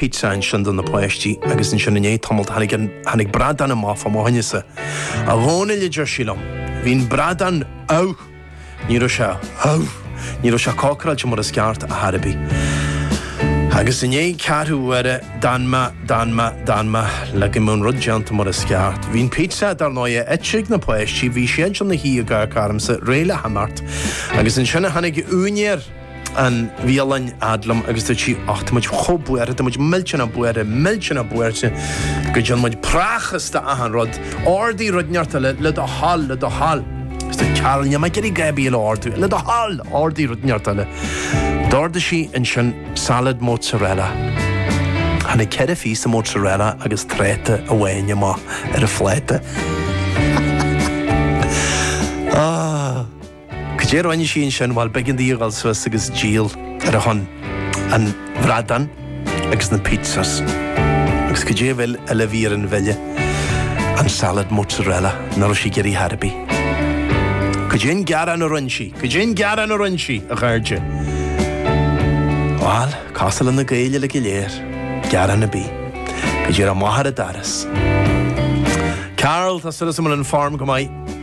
pizza ansin do na páistí agus ansin i ndiaidh tamalt tháinig an, tháinig bradán amach fá mo choinnese. A Dhónaill a deir sí liom, bhí an bradán amh, ní raibh sé, ní raibh sé cócaráilte mar is ceart ar chor ar bith. Agus i ndiaidh ceathrú uaire, d'fhan mé, d'fhan mé, d'fhan mé le go mbeadh an rud déanta mar is ceart. Bhí an pizza dar ndóighe ite ag na páistí, bhí siad ansin ina suí ag amharc ormsa, réidh le himeacht. Agus ansin a tháinig úinéir. an bhialann fhad liom agus dúirt sí Och, tá muid chomh buartha, tá muid millteanach buartha, millteanach buartha go dtearn muid prácás de achan rud. Ordaigh rud inteacht eile le do thoil, le do thoil. Is dúirt Carol níl mé ag iarraidh a dhath ar bith eile a ordú, le do thoil, ordaigh rud inteacht eile. D'ordaigh sí ansin salad mozzarella. Tháinig ceithre phíosa mozzarella agus tráta amháin amach ar an phláta. Cad é a rinne sí ansin? Bhuel, b'éigean di a ghabháil suas agus díol ar shon an bhradáin agus na pizzas. Agus cad é a bhfuil eile a bhí ar an bhille? An salad mozzarella, nach raibh sí ag iarraidh ar chor ar bith. Cad é an gearán a rinn sí? Cad é an gearán a rinn sí, a chairde? Bhuel, cosúil leis na Gaeil uile go léir, gearán ar bith. Go díreach amach ar an doras. Carol, tá súil agam go bhfuil an form go maith.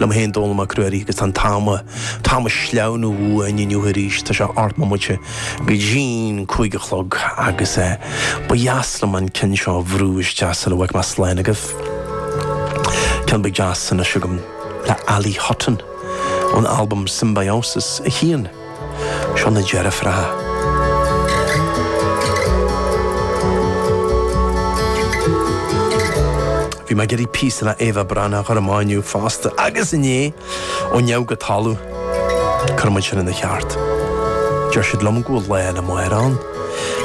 liom féin, Dónall Mac Ruairí, agus tá an t-am, an t-am ag sleamhnú uainn inniu arís, tá sé ocht mbomaite go dtí an cúig a chlog agus ba dheas liom an ceann seo a bhrú isteach sula bhfágfaidh mé slán agaibh. Ceann beag deas anois agam le Ali Hutton ón albam Symbiosis 1. Seo na deirfiúracha. Bhí mé ag iarraidh píosa le Eva Brennan a chur amach inniu fosta agus inné, ó neamh go talamh, cuirfidh muid sin ina cheart. Deir siad liom go bhfuil lá eile amárach ann.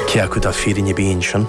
Cé acu tá fírinne ar bith ansin?